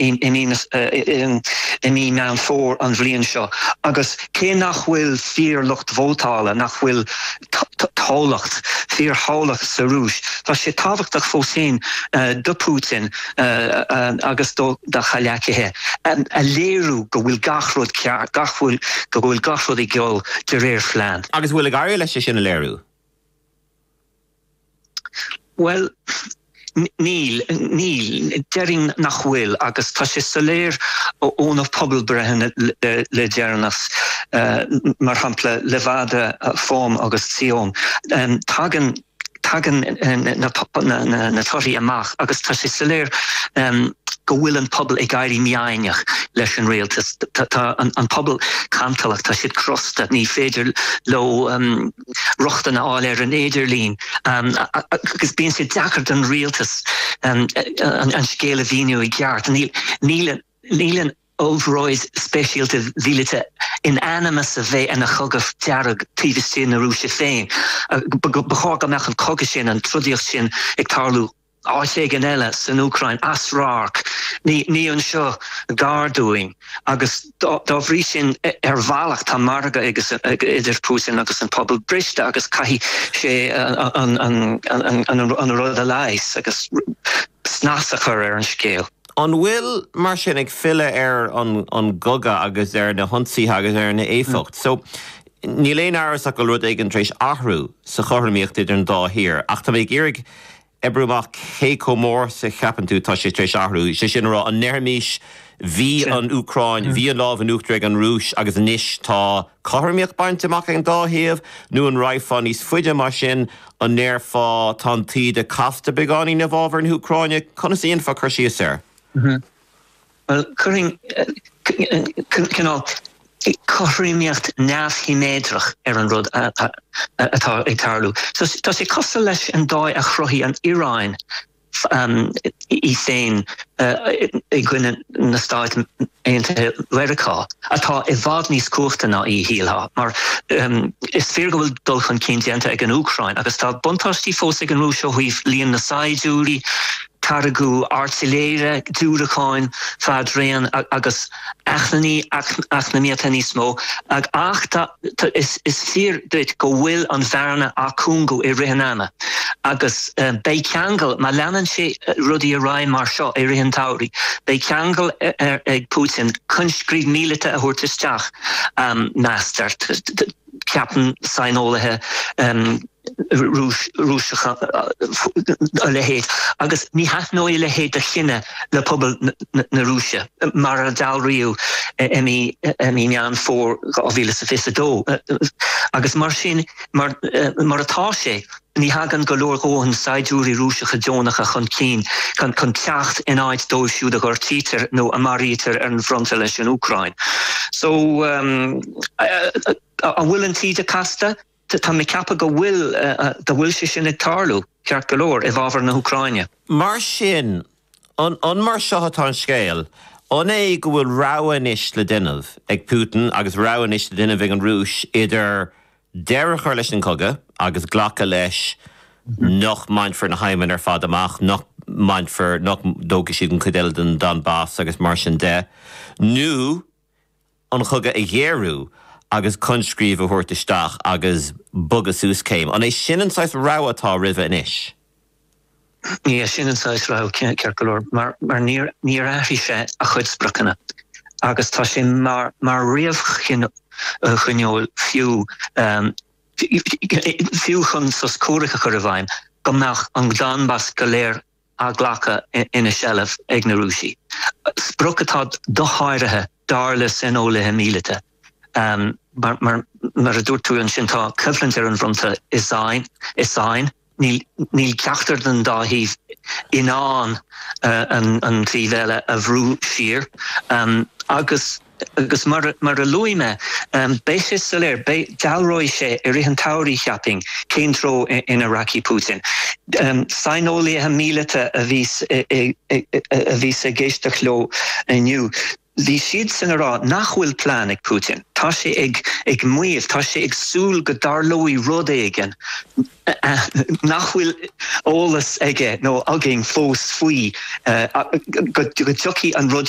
i mí Meán Fómhair an bhliain seo agus cé nach bhfuil fíorlucht vótála, nach bhfuil toghlacht, fíorthoghlacht sa Rúis, tá sé tábhachtach fós féin do Putin agus dá chomhleacaithe a léiriú go bhfuil gach rud ceart, gach rud, go bhfuil gach rud ag dul de réir phlean. Agus an bhfuil ag éirí leis é sin a léiriú? Bhuel. níl. Níl. Déarfainn nach bhfuil agus tá sé soiléir ó na pobalbhreitheanna le deireanas, mar shampla Levada, FOM agus VTsIOM, tagann, tagann na torthaí amach agus tá sé soiléir go bhfuil an pobal ag éirí mífhoighneach leis an rialtas. Tá an pobal cantalach, tá siad crosta, ní féidir leo. rochtain a fháil ar an idirlíon agus bíonn sé deacair don rialtas an scéal a mhíniú i gceart. Níl an obráid speisialta mhíleata in ainm is a bheith ina chogadh dearg taobh istigh na Rúise féin. Ba chóir go mbeadh an cogadh sin, an trodaíocht sin ag tarlú áit éigin eile san Úcráin, as radharc, ní anseo gar dúinn, agus dá bhrí sin, ar bhealach, tá margadh idir Putin agus an pobal briste agus caithfidh sé an rud a leigheas agus snas a chur ar an scéal. An bhfuil, mar sin, ag filleadh ar an gcogadh agus ar na hionsaithe agus ar an éifeacht seo? Níl aon amhras ach go bhfuil rud éigin tar éis athrú sa chothromaíocht idir an dá thír, ach tá mé ag iarraidh oibriú amach cé chomh mór is a cheapann tú tá sé tar éis athrú, sé sin a rá, an ndéarfaimís bhí an Úcráin, bhí an lámh in uachtar ag an Rúis agus anois tá cothromaíocht bainte amach ag an dá thaobh, nó an raghfá níos faide mar sin, an ndéarfá tá an taoide casta beagáinín i bhfábhar na hÚcráine, conas a dhéanfá cur síos air? Bhuel, chuirfinn cineál cothromaíocht neamhshiméadrach ar an rud atá ag tarlú. Tá sé cosúil leis an dóigh a chruthaigh an Iaráin í féin i gcoinne na Stáit Aontaithe Mheiriceá, atá i bhfad níos cumhachtaí ná í, shílfeá. Mar is fíor go bhfuil dul chun cinn déanta ag an Úcráin agus tá buntáistí fós ag an Rúis ó thaobh líon na saighdiúirí, táirgeadh airtléire, diúracáin fadraoin agus acmhainní eacnamaíochta níos mó, ach tá, is fíor duit go bhfuil an bhearna á cúngú i rith an ama agus beidh ceangal, má leanann sé rudaí ar aghaidh mar seo i rith an tsamhraidh, beidh ceangal ag Putin coinscríobh míleata a thabhairt isteach, meastar. Ceapann saineolaithe Rúiseacha a leithéid, agus ní thaitneoidh a leithéid de chinneadh le pobal na Rúise, mar a dealraíodh i mí Meán Fómhair 2022. Agus mar sin mar seo atá sé. Ní thagann go leor dhóthain saighdiúirí Rúiseacha deonacha chun cinn chun teacht in áit dóibh siúd a ghortaítear nó a mharaítear ar an bhfronta leis an Úcráin. So. an bhfuil an taoide casta? Táim ag ceapadh go bhfuil go bhfuil sé sin ag tarlú, ceart go leor, i bhfabhar na hÚcráine. Mar sin, an mar seo atá an scéal? An é go bhfuil rogha anois le déanamh ag Putin agus rogha anois le déanamh ag an Rúis idir deireadh a chur leis an gcogadh agus glacadh leis nach mbainfear na haidhmeanna ar fad amach, nach mbainfear, nach dtógfaidh siad an chuid eile den Donbas agus mar sin de, nó an cogadh a ghéarú agus coinscríobh a thabhairt isteach agus bogadh suas céim. An é sin an saghas rogha atá roimhe anois? Is é sin an saghas rogha ceart go leor mar níor athraigh sé a chuid spriocanna agus tá sé mar réamhchoinníoll fiú fiú chun sos comhraic a chur i bhfeidhm go mbeadh an Donbas go léir á ghlacadh ina seilbh ag na Rúisigh, sprioc atá dosháraithe dar le saineolaithe míleata. Mar a dúirt tú ansin, tá coimhlint ar an bhfronta i sáinn. Níl ceachtar den dá thaobh in ann an taobh eile a bhrú siar agus, mar a luaigh mé, beidh sé soiléir, dealróidh sé i rith an tsamhraidh, cheapfainn, cén treo ina rachaidh Putin. Saineolaithe míleata a bhí, bhíos ag éisteacht leo inniu. Bhí siadsan ag rá nach bhfuil plean ag Putin. Tá sé ag maíomh, tá sé ag súil go dtarlóidh rud éigin nach bhfuil eolas aige nó againn fós faoi, go dtiocfaidh an rud